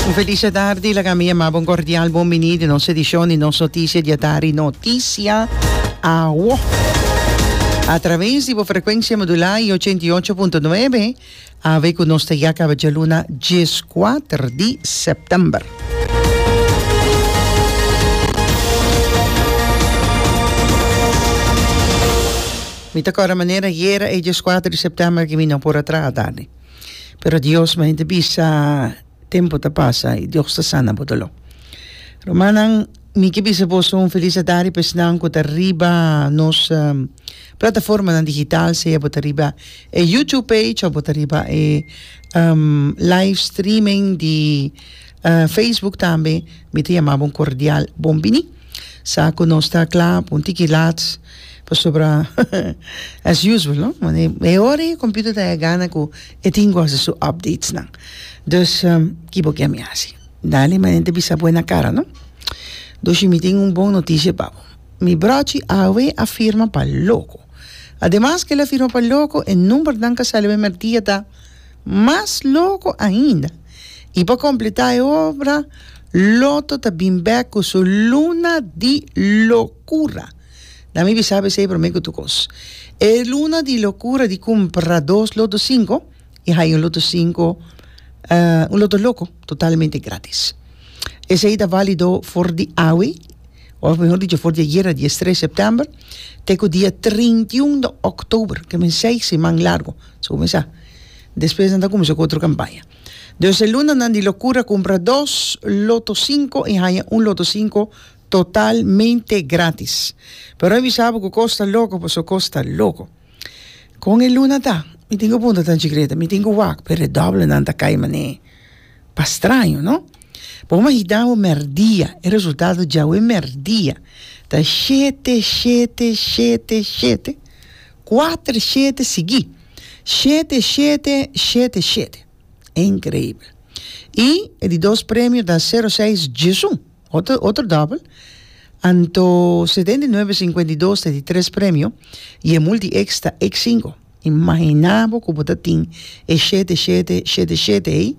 Un feliz e tardi, laga mi yamabo un cordial bon bini di nos edicion di nos noticia di e tardi Noticia Awo. A traves di bo frecuencia modula y ochenta y ocho punto nuebe, awe cu nos ta yaka awe djaluna dieskuater di september. Mi ta cora manera yera e dieskuater di september cu mi no por a traha tardi. pero Dios ma hende bisa tempo ta pasa y Dios ta sana bo dolor. Rumannan, mi ke bisa boso un feliz edad riba esnan ku ta riba nos um, plataformanan digital, sea bo ta riba e YouTube page of bo ta riba e um, live streaming di Facebook tambe mi ta yama bo un cordial bon bini sa cu nos ta cla pa un tiki lats pasobra as usual no e ora e computer ta haña gana cu e tin cu haci su updates nan dus ki bo kier mi haci dale manera di bisa bo na cara no dushi mi tin un bon noticia pa bo mi brochi awe a firma pa loco ademas cu el a firma pa loco e numbernan cu a sali mertia ta Mas loko ainda, i pa kompletá e obra, Loto ta bin bèk ku su luna di lokura. Na mi bisa p'esei promé ku tur kos. E luna di lokura di kumpra dos loto sinko i haya un loto sinko, un loto loko, totalmente gratis. Esei ta válido for di awe, òf mihor dicho for di ayera, di es tres sèptèmber, te ku dia trinta i un di òktober, ke men seis siman largu. Despues nan ta cuminsá cu otro campaña. Dos elunanan di locura cumpra dos Lotto Cinco y haña un Lotto Cinco totalmente gratis. Pero mi sabi cu cos ta loco pasobra cos ta loco. Con e luna ta? Mi tin cu puntra ta anchi Greta. Mi tin cu wak, pero e doblenan ta cay manera pastraño, no? Bo mi a hita bo merdia. E resultado djawe merdia ta shete, shete, shete, shete. Kuater shete sigui. Shete, shete, shete, shete. Inkreibel. I e di dos premio ta sero seis djesu. Otro, otro dòbel. Anto setenta i nuebe sinkuenta i dos ta e di tres premio i e multi eks ta eks sinko. Imaginá bo ku bo ta tin e shete, shete, shete, shete ei,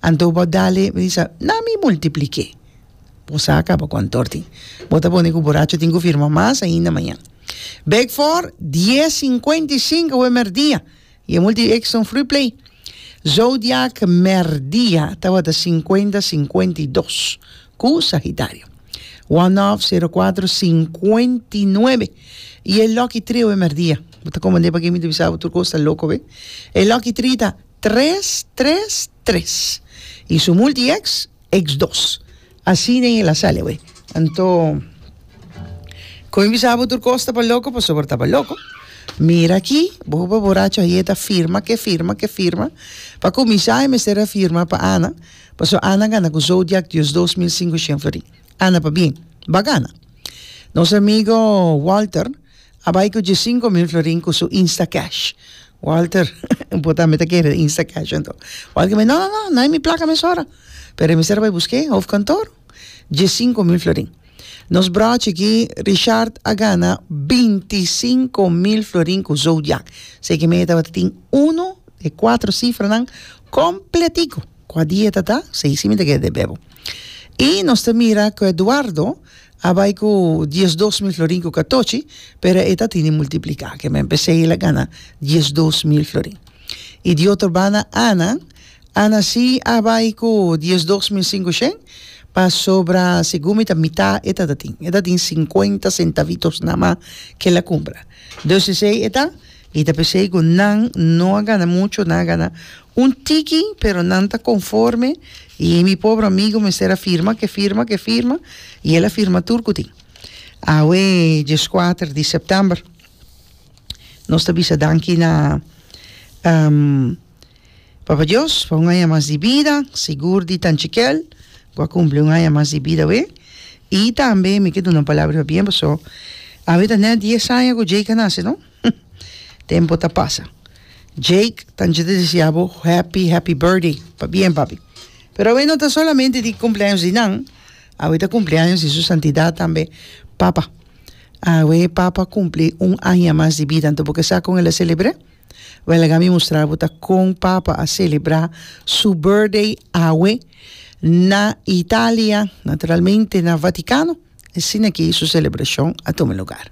anto bo a dale, bo a bisa, nan mi multipliké. Bo sa a kaba ku antor tin. Bo ta boni ku buracha tin ku firma mas ainda mañan. Bek for dies sinkuenta i sinku awe mèrdia i e multi Exxon Free Play. Zodiak mèrdia tabata sinkuenta sinkuenta i dos ku Sagitario. One Off sero kuater sinkuenta i nuebe i e Lucky Tree awe mèrdia. Bo ta komand'é pakié mi ta bisa bo tur kos ta loko awe. E Lucky Tree ta tres tres tres. I su mul di eks, eks dos. Así den e La Salle awor. Anto, con mi bisa bo tur cos taba loco, pasobra taba loco. Mira aki, bo hopi boracho ayer ta firma ke firma ke firma. Pa cuminsa e mester a firma pa Ana, pasobra Ana a gana cu Zodiac diosdos mil singushen florin. Ana pa bien, bo a gana. Nos amigo Walter. a bai cu dje cinco mil florin cu su Instacash. Walter, Bo tambe ta kere den Instacash anto? Walter me, No, no, no, no hay mi placa mesora. Pero e mester a bai busqu'e hofkantoor. Dje cinco mil florin. Nos brochi aki, Richard, a gana binti cinco mil florin cu Zodiac. Sey ki mey e tabata tin uno de e cuatro cifranan completico. Cua dia e ta ta? Sey si mi ta kere den Bebo. I nos ta mira ku Eduardo a bai ku diesdos mil florin ku katochi, pero e ta tini multipliká. Ke men p'esei el a gana diesdos mil florin. I di otro banda Ana, Ana si a bai ku diesdos mil singushen, pasobra segun mi ta mitá e tata tin. E ta tin sinkuenta sentavitos namá ke el a kumpra. Dus esei e ta I ta p'esei ku nan no a gana mucho, nan a gana un tiki, pero nan ta konforme, i mi pobre amigu mester a firma ke firma ke firma, i el a firma tur kutin. Awe dieskuater di sèptèmber nos ta bisa danki na. Papa Dios pa un aña mas di bida sigur di tanchikel cu a cumpli un aña mas di bida we y tambe mi ke duna un palabra pa bien paso awe ta net dies aña cu Jake a naci no tempo ta pasa Jake tanchi ta desea bo happy happy birthday pa bien papi pero awe no ta solamente di cumpleaños di nan awe ta cumpleaños di su santidad tambe papa awe papa cumpli un aña mas di bida anto bo ke sa con el a celebre. Wellega mi mustra bo ta kon papa a celebra su birthday awe na Italia, naturalmente na Vaticano asina ki su celebracion a tuma lugar.